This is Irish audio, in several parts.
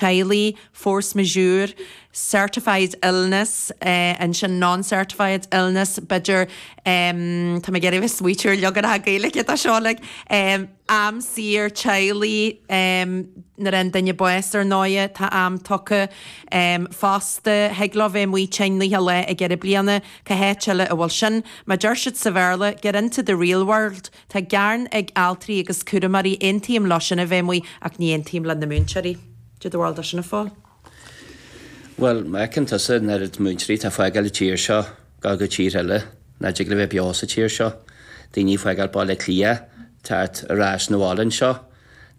teaghlaigh, force majeure, certified illness, ansin non-certified illness, b'fhéidir, tá mé ag iarraidh smaointiú ar leagan Gaeilge dó seo like, am saor teaghlaigh, nuair a fhaigheann duine bás ar ndóigh, tá am tugtha, fosta, thig leo bheith amuigh tinn leath lae i gceithre bliana, cá háit eile a bhfuil sin? Má deir siad sa Bhéarla, get into the real world. Tá gearán ag altraí agus cúramóirí, aontaím leosan a bheith amuigh ach ní aontaím leis na múinteoirí. Did the world do sin a fáil? Bhuel, má fheiceann tusa an oiread múinteoirí atá ag fágáil an tír seo go go tír eile nach dtig leo bheith beo sa tír seo, daoine ag fágáil Baile Átha Cliath, teacht ar ais 'na bhaile anseo,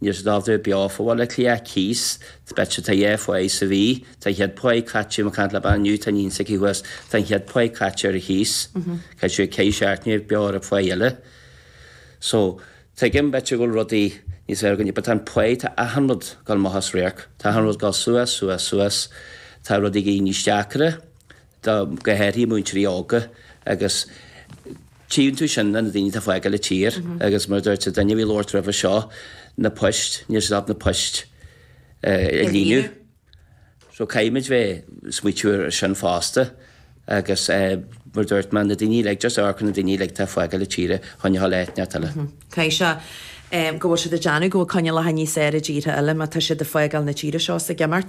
Níl siad ábalta bheith beo fá Bhaile Átha Cliath cíos, b'fhéidir tá sé fá ace sa mhí, tá an chéad phá caite, bhí mé ag caint le bean inniu, tá iníon s'aici thuas, tá an chéad phá caite ar an chíos, caithfidh sí ansin a bheith beo ar an phá eile. So, tuigim b'fhéidir go bhfuil rudaí níos fearr againne but tá an pá, tá achan rud ag gabháil amach as radharc, tá achan rud ag gabháil suas, suas, suas, tá rudaí ag éirí níos deacra, do, go háirithe múinteoirí óga agus tchíonn tú sin ar na daoine atá ag fágáil na tíre agus mar a dúirt an duine a bhí ag labhairt roimhe seo na poist níl siad ábalta na poist a líonadh so caithfimid bheith ag smaointiú ar sin fosta agus mar a dúirt mé na daoine uilig just amharc ar na daoine uilig atá ag fágáil na tíre chun ghabháil áit inteacht eile. Cinnte go bhfuil siad ag déanamh go bhfuil coinníollacha níos fearr i dtíortha eile má tá siad ag fágáil na tíre seo is ag imeacht?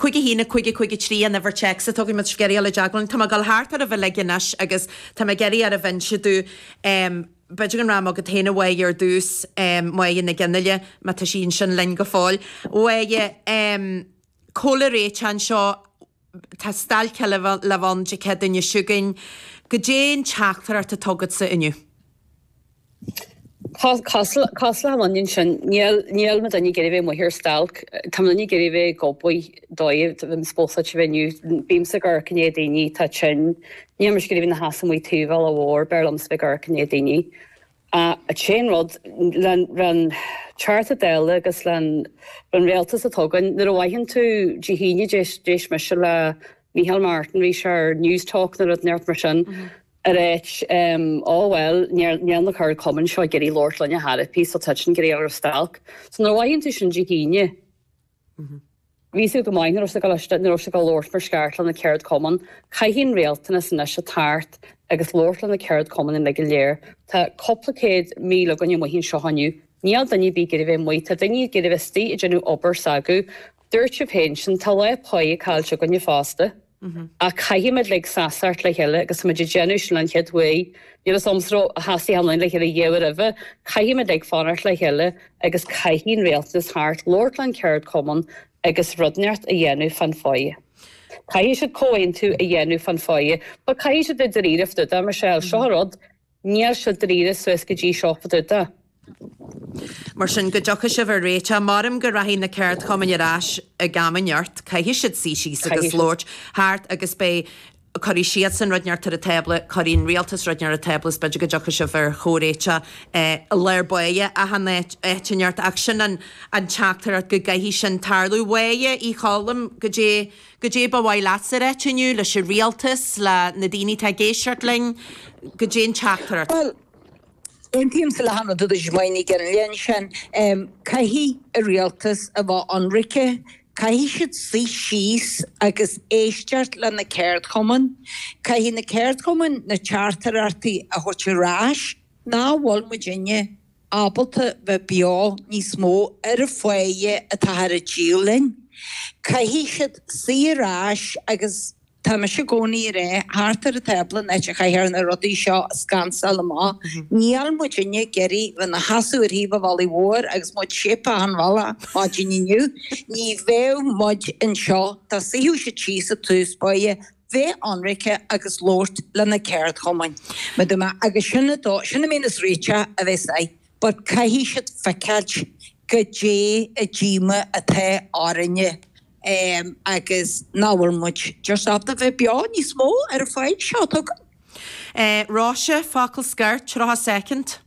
Cúig a haon, cúig cúig trí an uimhir téacs tógfaidh muid sos gan mhoill le Deaglán. Tá mé ag dul thart oraibh uilig anois agus tá mé ag iarraidh oraibh inse dúinn. B'fhéidir go rachainn chugat féin a Mháire ar dtús, Máire Nic Fhionnlaoich, má tá sí ansin linn go fóill. Mháire, Cá bhfuil a réiteach seo, Tá stailc eile le bheith ann Dé Céadaoin seo chugainn. Goidé an teachtaireacht atá agatsa inniu? Cosúil le, is ionann sin. Níl na daoine ag iarraidh bheith amuigh ar stailc. Tá na daoine ag iarraidh bheith ag obair. Tá mé supposáilte bheith inniu. Bímse ag amharc i ndiaidh daoine atá tinn. Níl mise ag iarraidh bheith i mo sheasamh amuigh taobh an bhealaigh mhóir. B'fhearr liomsa bheith ag amharc i ndiaidh daoine. Achan rud, leis an charter deal agus leis an Rialtas a tugann, nuair a fhaigheann tú Dé hAoine d'éist mise le Micheál Martin aréir ar Newstalk nó rud inteacht mar sin, ag ráit, Ó bhuel, níl na ceardchumainn seo ag iarraidh labhairt linn ar chor ar bith so tá siad ag iarraidh ghabháil ar stailc. So nuair a fhaigheann tú sin Dé hAoine, Bhí a fhios go maith nach raibh sé ag éisteacht nuair a bhí sé ag labhairt mar is ceart leis na ceardchumainn. Caithfidh an Rialtas anois suí thart agus labhairt leis na ceardchumainn uilig go léir. Tá cúpla céad míle againn amuigh anseo inniu. Níl duine ar bith ag iarraidh bheith amuigh. Tá daoine ag iarraidh bheith istigh ag déanamh obair s'acu. Dúirt tú féin sin. Tá lá pá caillte againne fosta. Ach caithfidh muid uilig seasacht le chéile agus tá muid ag déanamh sin an chéad mhaí. Níl fhios agamsa ar sheasaigh amhlaidh le chéile ariamh roimhe. Caithfidh muid uilig fanacht le chéile agus caithfidh an Rialtas theacht labhairt len ceardchumann agus rud inteacht a dhéanamh fán pháighe. Caithfidh siad comhaontú a dhéanamh fán pháighe. But caithfidh siad a bheith dáiríre fadúda, mar seo é seo an rud. Níl siad dáiríre suas go dtí seo fadúda. Mar sin, go dtiocfaidh sibh ar réiteach. Maram go rachaidh na ceardchumainn ar ais ag am inteacht, caithfidh siad suí síos agus labhairt thart agus beidh, cuirfidh siadsan rud inteacht ar an tábla, cuirfidh an Rialtas rud inteacht ar an tábla is b'fhéidir go dtiocfaidh sibh ar chomhréiteach. Lár báire achan áit inteacht ach sin an teachtaireacht go gcaithfidh sin tarlú. Mháire Ní Choilm goidé. Goidé ba mhaith leatsa a ráit inniu leis an Rialtas, le na daoine tá ag éisteacht linn, goidé'n teachtaireacht? Bhuel, aontaímsa le achan rud a dúirt Maude Gillen Liath ansin. Caithfidh an Rialtas a bheith ionraice, caithfidh siad suí síos agus éisteacht le na ceardchumainn. Caithfidh na ceardchumainn na teachtaireachtaí a thabhairt ar ais. Nach bhfuil muidinne ábalta bheith beo níos mó ar an pháighe atáthar a díol linn. Caithfidh siad suí ar ais agus tá mise i gcónaí ag ráit thart ar an tábla an áit a gcaithfear na rudaí seo a scansáil amach. Níl muidinne ag iarraidh bheith na seasamh ar thaobh an bhealaigh mhóir agus muid síobtha chun bealaigh maidin inniu, ní bheadh muid anseo dá suífeadh siad síos ag tús báire bheith ionraice agus labhairt le na ceardchumainn. Maidir le agus sin an dóigh, sin a mbíonn is rite a bheith aigh but caithfidh siad feiceáilt goidé an díomá atá orainne em agus nach bhfuil muid just ábalta bheith beo níos mó ar an pháighe seo. Tuigim? Eh, Róise, focal scoir, tríocha soicind.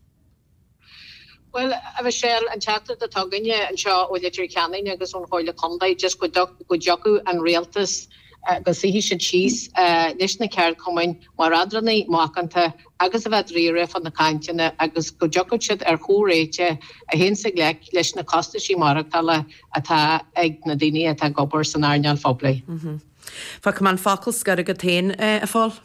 Bhuel, a Mhichelle, an teachtaireacht atá againne anseo ó Leitir Ceanainn agus ón Chomhairle Contae, just go go dtiocfadh an Rialtas, go suífeadh siad síos leis na ceardchumainn mar eadránaí macánta agus a bheith dáiríre fá na cainteanna agus go dtiocfadh siad ar chomhréiteach a théanns i ngleic leis na costaisí maireachtála atá ag na daoine atá ag obair san earnáil phoiblí. Fágfaidh mé an focal scoir agat féin, a Phóil.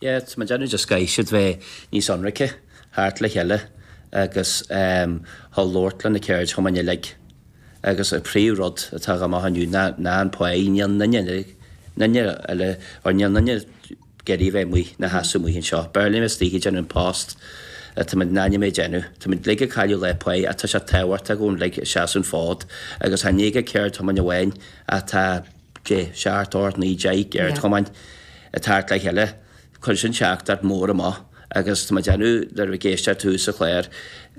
Yes, má deineadh just caithfidh siad bheith níos ionraice theacht le chéile agus theacht labhairt le na ceardchumainn uilig agus an príomhrud atá agam á thabhairt inniu ná an pháigh níl aon duine uile eile or níl aon duine ag iarraidh bheith amuigh ina sheasamh amuigh anseo. B'fhearr linn istigh ag déanamh an post atá muid in ainm a dhéanamh. Tá muid uilig ag cailleadh lá páighe ach tá sé tábhachtach dhúinn uilig a seasamh an fód agus tá ní hé an ceardchumann amháin atá Té, seacht, ocht, naoi, deich a chur thart le cheile. Cuir sin teachtaireacht mhór amach agus tá mé ag déanamh go raibh na héisteoirí sa chláir.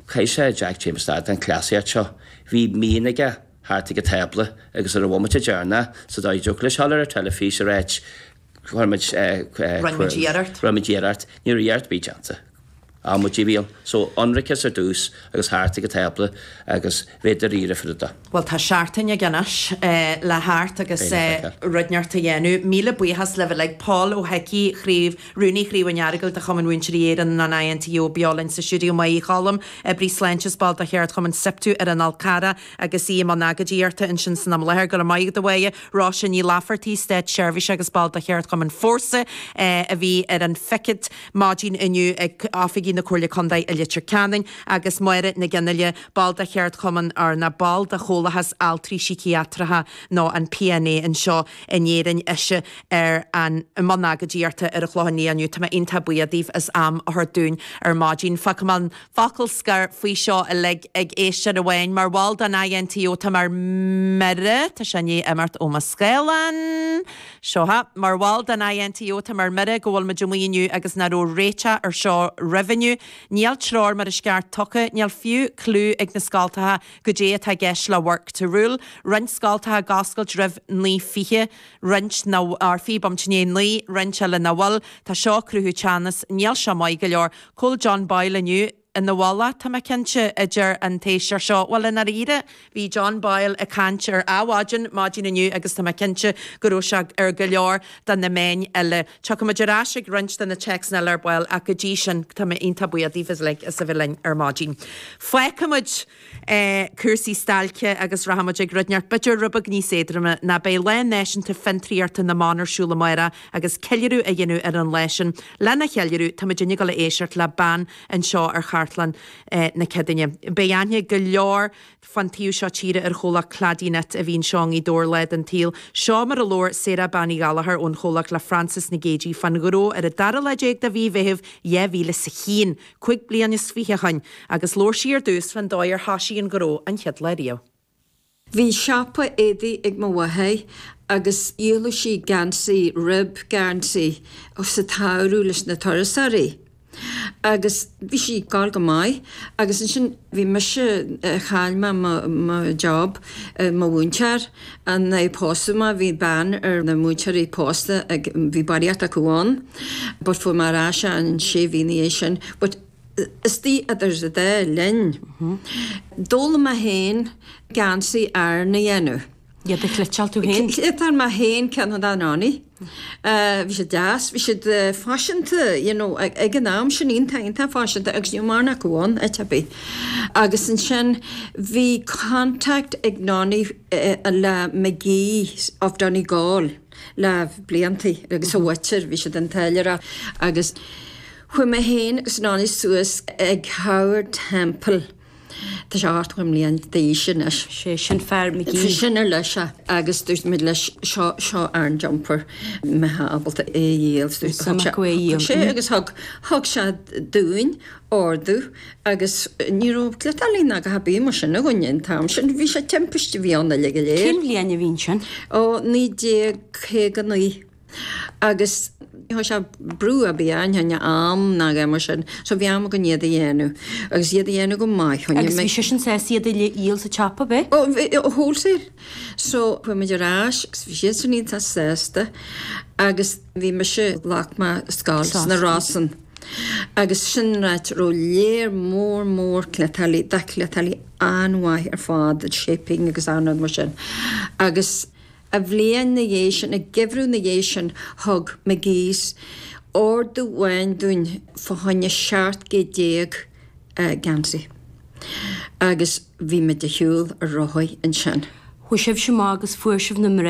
Caithfidh Jack Chambers stad den cleasaíocht seo. Bheith macánta thart ag an tábla agus ar an bhomaite deirneach sa dóigh go dtiocfadh leis dul ar an teilifís a ráit go Cuirfimid cuireadh. Rinn muid iarracht. Ní raibh iarracht ar bith déanta. Bhí muid ag an... So, ionracas ar dtús agus thart ag an tábla agus bheith dairíre faoi rudaí. Bhuel, tá seachtain againn anois le theacht agus rud inteacht a dhéanamh. Míle buíochas libh uilig. Pól Ó hIcí, Chraobh, Rúnaí Chraobh an Earagail de Chumann Mhúinteoirí Éireann nó an INTO beo linn sa stiúideo Méabh Uí Choilm, Oibrí Sláinte is ball de Cheardchumann Siptu ar an Fhál Charrach, agus í i mbun agóidíochta ansin san am i láthair. Go raibh maith agat, a Mháire. Róise Ní Laifeartaí, Státseirbhíseach agus ball de Cheardchumann Fórsa, a bhí ar an phicéad maidin inniu ag oifigí na Comhairle Contae i Leitir Ceanainn, agus Máire McGinley, ball de Cheardchumann, nó, ball de Chomhlathas Altraí Síciatracha nó an PNA anseo in Éirinn, ise i mbun agóidíochta ar an Chlochán Liath inniu. Tá mé iontach buíoch daoibh as am a thabhairt dúinn ar maidin. Fágfaimid an focal scoir faoi seo uilig ag éisteoir amháin. Mar bhall den INTO táim ar mire, tá sé i ndiaidh imeacht ó mo scáileán. Seo é. Mar bhall den INTO táim ar mire go bhfuil muid amuigh inniu agus nach raibh réiteach ar seo roimh inniu. Níl treoir mar is gceart tugtha, níl fiú cliú ag na scoltacha goidé atá i gceist le work to rule. Roinnt scoltacha ag oscailt roimh 9:20, roinnt faoi am a 9, roinnt eile nach bhfuil. Tá seo ag cruthú teannas. Níl seo maith go leor. Chuala mé John Boyle inniu. Is mar bhall, tá mé cinnte, a deir an t-éisteoir seo. Bhuel, i ndáiríre, bhí John Boyle ag caint ar Adhmhaidin maidin inniu agus tá mé cinnte go raibh sé ar go leor de na meáin eile. Tiocfaimid ar ais ag roinnt de na téacsanna eile ar ball ach go dtí sin, tá mé iontach buíoch daoibhse uilig as a bheith linn ar maidin. Fágfaimid cúrsaí stailce agus rachaimid ag rud inteacht b'fhéidir rud beag níos éadroime nó beidh Lá Náisiúnta Fiontraíochta na mBan ar siúl amáireach agus ceiliúradh á dhéanamh ar an lá sin. Lena cheiliúradh tá muidinne ag gabháil a éisteacht le bean anseo ar Chartlann na Céadaoine. Beidh aithne ag go leor fán taobh seo tíre ar chomhlacht Cladyknit a bhí anseo i nGaoth Dobhair lá den tsaol. Seo mar a labhair Sarah Bean Uí Ghallachóir ón chomhlacht le Frances Nic Géadaigh fán ngnó ar an dara lá déag de mhí Mheithimh 2001. cúig bliain is fiche ó shin, agus labhair sí ar dtús fán dóigh ar thoisigh an gnó an chéad lá ariamh. Bhí siopa éadaigh ag mo mhathair agus dhíoladh sí geansaí, uilig, geansaí, sa tSamhradh leis na turasóirí agus bhí sí ag gabháil go maith agus ansin, Bhí mise, chaill mé mo job, mo mhúinteoir, nuair a pósadh mé, bhí ban ar na múinteoirí pósta ag, bhí barraíocht acu ann but fuair mé ar ais é sé mhí ina dhiaidh sin but istigh idir an dá linn, d'fhoghlaim mé féin geansaí Árann a dhéanamh. Iad a chleiteáil tú fhéin? Chleiteáil mé fhéin ceann do Nonny. Bhí siad deas, bhí siad faiseanta you know ag an am sin, iontach iontach faiseanta agus níl mórán acu in áit ar bith. Agus ansin bhí contact ag Nonny le McGee's of Donegal le blianta agus a mhuintir, bhí siad ag táilliúireacht agus chuaigh mé fhéin agus Nonny suas ag Howard Temple, Tá sé ochtó bliain d'aois anois. Sé sin fear Magee. Bhí sin ar leis é agus dúirt muid leis seo seo ár jumper an mbeifeá ábalta é a dhíol. Thug sé thug sé agus thug thug sé dúinn ordú agus ní raibh cleiteálaí ná a dhath ar bith mar sin againn an t-am sin. Bhí sé timpiste a bhí ann uilig go léir. Cén bhliain a bhí sin? Ó 1959. Agus char chuir sé brú ar bith orainn fá choinne am ná a dhath mar sin. So bhí am againn iad a dhéanamh. Agus iad a dhéanamh go maith. Agus bhí seisean sásta iad a dhíol sa tsiopa, bhí? Ó bhí, ó wholesale. So chuaigh muid ar ais agus bhí siadsan iontach sásta agus bhí mise, ghlac mé scoil sna Rosann. Agus sin áit a raibh lear mór mór cleiteálaithe, de chleiteálaithe an-mhaith ar fad, shaping agus achan rud mar sin. Agus. An bhliain na dhiaidh sin, an geimhreadh na dhiaidh sin, thug McGee's ordú amháin dúinn fá choinne seacht gcéad déag geansaí agus bhí muid ar shiúl ar rothaí ansin. Chuaidh sibhse amach agus fuair sibh na mná